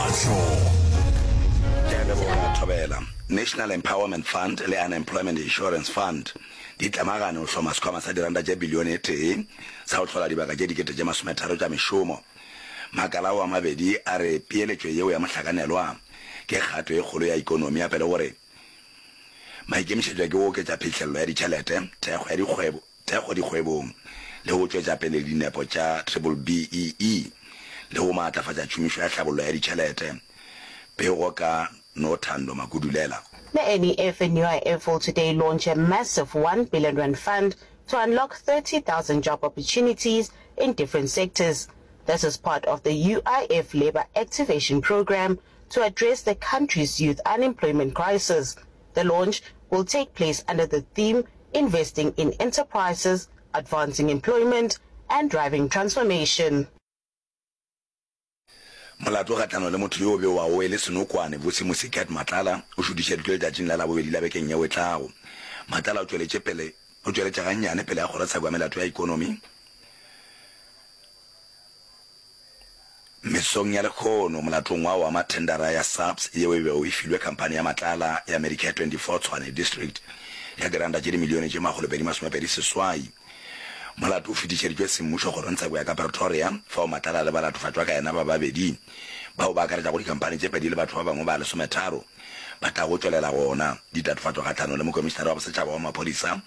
a hlogo. Ke a leboga Thobela. National Empowerment Fund le Unemployment Insurance Fund di tlemagane go hloma sekhwama sa diranta tše bilione e tee sa go hlola dibaka tše dikete tše masometharo tša mešomo. Makala ao a mabedi a re peeletšo yeo ya mohlakanelwa ke kgato e kgolo ya ekonomi gape le gore maikemišetšo ke go oketša phihlello ya ditšhelete, thekgo ya dikgwebo, thekgo dikgwebong le go tšwetša pele dinepo tša BBBEE le go maatlafatša tšhomišo ya tlhabollo ya ditšhelete, pego ka Nothando Makudulela. NEF and UIF will today launch a massive one billion rand fund to unlock 30,000 job opportunities in different sectors. This is part of the UIF Labour Activation Programme to address the country's youth unemployment crisis. The launch will take place under the theme Investing in Enterprises, Advancing Employment and Driving Transformation. Molato kgahlano le motho yo o bewago e le senokwane, Bosimusi Cat Matlala, o šutišeditšwe letšatšing la Labobedi la bekeng yeo e tlago. Matlala o tšweletše pele o tšweletše gannyane pele ga Kgorotsheko ya Melato ya Ekonomi, Mesong ya lekhono, molatong wa wa mathendara ya SAPS yeo e bego e filwe khamphani ya matlala ya Medicare 24 Tshwane District ya diranta tše dimilione tše makgolo pedi masome pedi seswai, molato o fetišeditšwe semmušo kgorongtsheko ya ka Pretoria fao matlala a le balatofatšwa ka yena ba babedi bao ba akaretšago dikhamphani tše pedi le batho ba bangwe ba lesometharo ba tlago tšwelela gona ditatofatšo kgahlano le Mokomišinara wa Bosetšhaba wa Maphodisa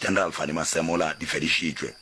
General Fannie Masemola di fedišitšwe.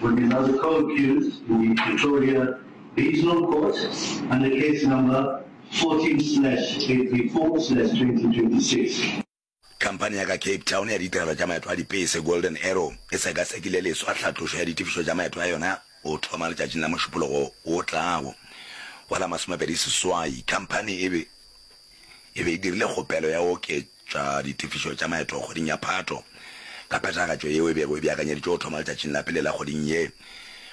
With another co-accused in the Pretoria Regional Court under case number 14 slash 834 slash 2026. Khamphani ya ka Cape Town ya ditirelo tša maeto a dipese Golden Arrow e sekasekile leswa hlatlošo ya ditefišo tša maeto a yona go thoma letšatšing la Mošupologo o tlago. Go la masomepedi seswai, khamphani e be e be e dirile kgopelo ya go oketša ditefišo tša maeto kgweding ya Phato ka phethagatšo yeo e bego e beakanyeditšwe go thoma letšatšing la pele la kgweding ye.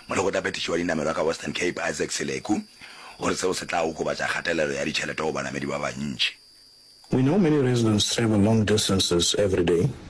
Molekgotlaphethiši wa dinamelwa ka Western Cape, Isaac Seleku, o re seo se tla okobatša kgatelelo ya ditšhelete go banamedi ba bantši. We know many residents travel long distances everyday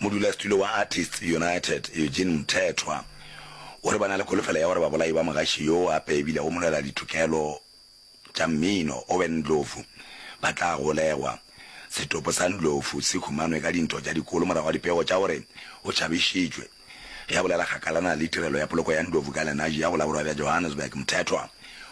Modulasetulo wa Artists United, Eugene Mthethwa, o re ba na le kholofelo ya gore babolai ba mogaši yo gape e bile o molweladitokelo tša mmino, Owen Ndlovu, ba tla golegwa. Setopo sa Ndlovu se humanwe ka dintwa tša dikolo morago ga dipego tša gore o tšhabišitšwe. Ge a bolela kgakalana le tirelo ya poloko ya Ndlovu ka Lenashi ya go la Borwa bja Johannesburg, Mthethwa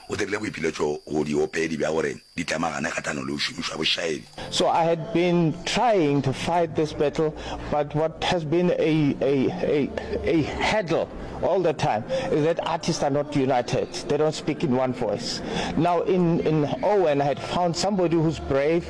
o dirile boipiletšo go diopedi bja gore di temagane kgahlano le go šomišwa bošaedi. So I had been trying to fight this battle but what has been a a a a hurdle all the time is that artists are not united, they don't speak in one voice. Now in in Owen I had found somebody who's brave,